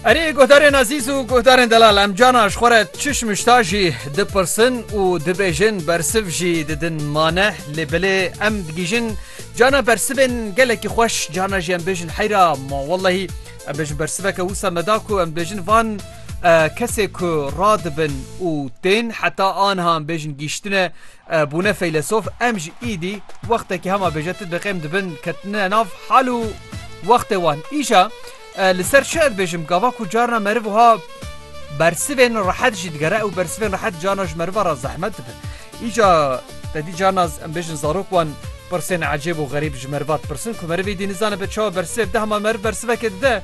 Erê guhdarên ezîz û guhdarên delal em cana ji xwe re çiş mişta jî dipirsin û dibêjin bersiv jî didin mane lê bilê em digihîjin cana bersivên gelekî xweş cana jî em bêjin heyra ma wellehî em bêjin bersiveke wisa me da ku em bêjin van kesê ku radibin û tên heta anha em bêjin gîştine Bûne feylesof em ji îdî wextekî hema bêje tu diqêm dibin ketine nav hal û wextê wan. Îşa li ser çi ez bêjim gava ku carna meriv wiha bersivên rehet jî digere ew bersivên rehet carna ji meriva re zehmet dibin. Îşa te dî carna em bêjin zarok wan pirsên ecêb û xerîb ji meriva dipirsin ku merivê dî nizane bi çawa bersiv dide hema meriv bersivekê dide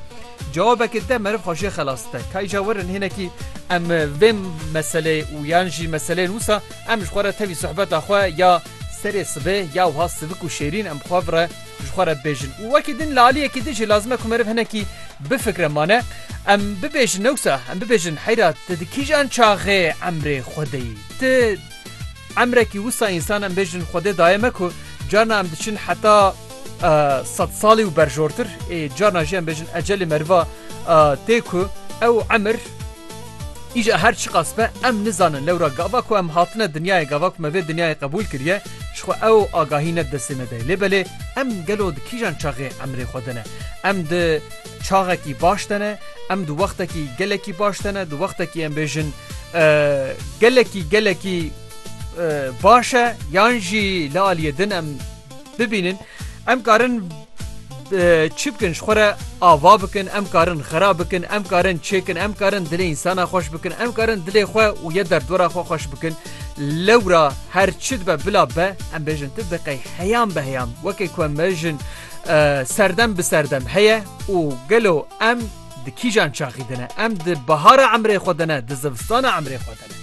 cewabekê dide meriv xwe jê xelas dide. Ka îşa werin hinekî em vê meseleyê û yan jî meseleyên wisa Em ji xwe re tevî sohbeta xwe ya serê sibê ya wiha sivik û şêrîn em bi xwe re ji xwe re bibêjin û wekî din li aliyekî din jî lazim e ku meriv hinekî bifikre mane em bibêjin ne wisa em bibêjin heyra tu di kîjan çaxê emrê xwe de yî tu emrekî wisa însan em bêjin xwe dê daye me ku carna em diçin heta sed salî û berjortir ê carna jî em bêjin ecelê meriva tê ku ew emir Îca her çiqas be em nizanin lewra gava ku em hatine dinyayê gava ku me vê dinyayê qebûl kiriye ji xwe ew agahî ne di destê me de ye. Lê belê em gelo di kîjan çaxê emrê xwe de ne? Em di çaxekî baş de ne, em di wextekî gelekî baş de ne, di wextekî em bêjin gelekî gelekî baş e yan jî li aliyê din em Bibînin em karin çi bikin ji xwe re ava bikin, em karin xera bikin, em karin çêkin, em karin dilê însana xweş bikin, em karin dilê xwe û yê derdora xwe xweş bikin. Lewra her çi dibe bila be em bêjin tu biqey heyan be heyan wekê ku em bêjin serdem bi serdem heye û gelo em di kîjan çaxî dine em di bahara emrê xwe dine di zivistana emrê xwe dine.